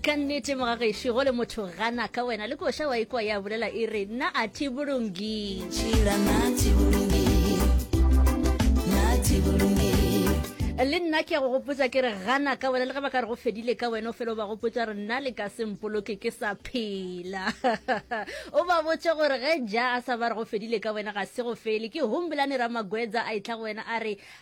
ka nnete mogagešo go le motho gana ka wena le koša wa ikwa ya bolela e re nna a tibolongi le nna ke ya go gopotsa ke re gana ka wena le ge ba ka re go fedile ka wena o fele o ba gopotsa re nna le ka sempoloke ke sa phela o ba botse gore ge ja a sa ba re go fedile ka wena ga se go fele ke humbolane ramagwetsa a e tla go wena a re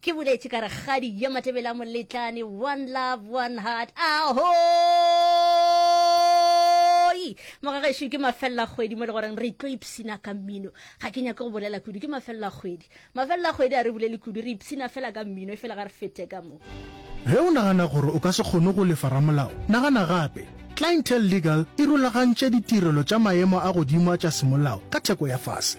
Ke boletše ka rakgadi yo Matebela Moletlane, one love, one heart, ahoi! Mogagešo ke mafelela kgwedi mo le goreng re tlo ipsina ka mmino. Ga ke nyake go bolela kudu, ke mafelela kgwedi. Mafelela kgwedi a re bolele kudu, re ipsina fela ka mmino, e fela ga re fete ka mo. Ge o nagana gore o ka se kgone go lefa ramolao, nagana gape. Clientele Legal e rulagantše ditirelo tša maemo a godimo a tša semolao ka theko ya fase.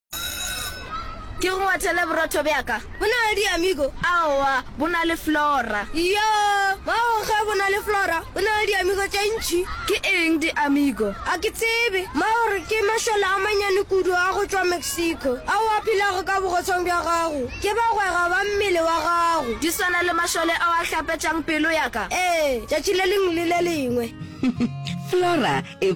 Ke go ngwathele borotho bja ka. Bo na le diamigo? Aowa, bo na le flora. Iyo, mago ge bo na le flora, bo na le diamigo tše ntši. Ke eng diamigo? Ga ke tsebe. Mma o re ke mašole a mannyane kudu a go tšwa Mexico, ao a phelago ka bogotshong bja gago. Ke bagwera ba mmele wa gago. Di swana le mašole ao a hlapetšang pelo ya ka? Ee, tšatši le lengwe le le lengwe. Flora e.